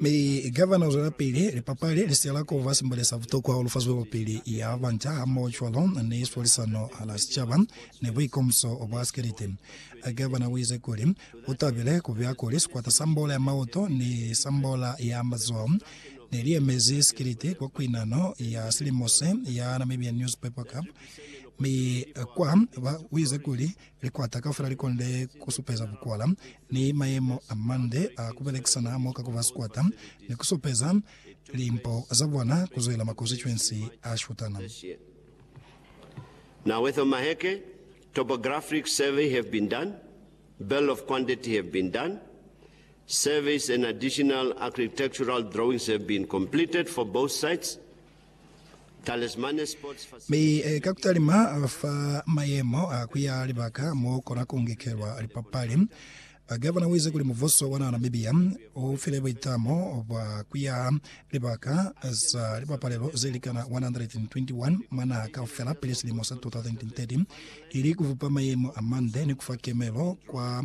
Mi kava na zwelapili, lipapali li siyela kuba simbale sa butokwa hahulu fa zwelopili ya banca hamohocwalo ni swalisano hala sicaba ni buikomuso bwa sikelete. Gavana uize kuli utabile kubuya kuli sikwata sa mbola ya maoto ni sa mbola ya mazoho neliemezi sikelete kwa kuinano ya silimo se ya Namibian Newspaper Cup mi kwa ba uize kuli Likwata kaufela li konde ku supeza bukwala ni mayemo a mande a ku belekisana hamoka ku ba sikwata ni ku supeza limpo za bona ku zwela makonsituensi a shutana. Now with Omaheke, topographic survey have been done, bill of quantity have been done, surveys and additional architectural drawings have been completed for both sites, Mi ka kutalima fa mayemo a kuya libaka mo kona ku ngekelwa lipapali, Gavana uize kuli mubuso wa na Namibia u file buitamo bwa kuya libaka za lipapalelo ze likana 121 mwa naha kaufela pili silimo sa 2030, ili kubupa mayemo amande ni kufa kemelo kwa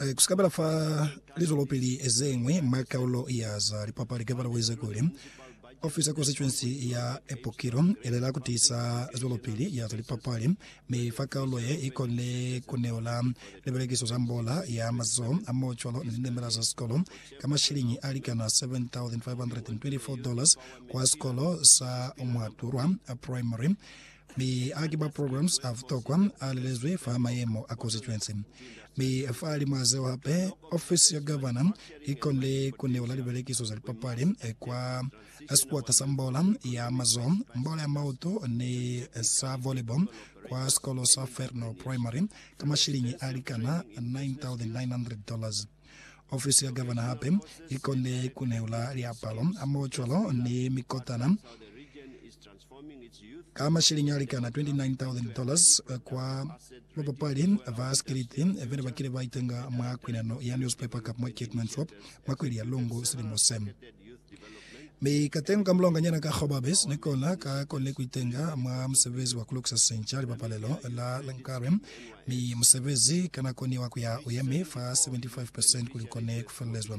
Eh, ku sikabela fa lizwelopili zeñwi mwa kaulo ya za lipapali ke balawize kuli, Ofisi ya Konstituensi ya Epokilo ilela ku tiisa zwelopili ya za lipapali, mi fa kaulo ye i kone ku neola libelekiso za mbola ya mazoho a mo cwalo ni linemela za sikolo ka mashiliñi a likana $7,524 kwa sikolo sa Mwaturwa Primary. Mi haki ba programs a butokwa a lelezwi fa mayemo a constituency. Mi fa limwa zeo hape, ofisi ya gavana i konile ku neula libelekiso za lipapali kwa sikwata sa mbola ya mazoho, mbola ya mautu ni sa volleyball kwa sikolo sa Fernal Primary ka mashilingi a likana $9,900. Ofisi ya gavana hape i konile ku neula liapalo, mocwalo ni mikotana ka mashilingi a likana 29,000 dollars kwa babapali ba sikiliti bene ba kile ba itenga mwa kwinano ya Newspaper Cup mwa Cape Manthorp mwa kweli ya Lungu silimo se. Mi katengo ka mulonganyana ka Gobabis ni kona ka konile ku itenga mwa musebezi wa ku lukisa sinca lipapalelo la Lankarem, mi musebezi ka nako ni wa ku ya u yemi fa 75 percent kuli u kone ku felelezwa.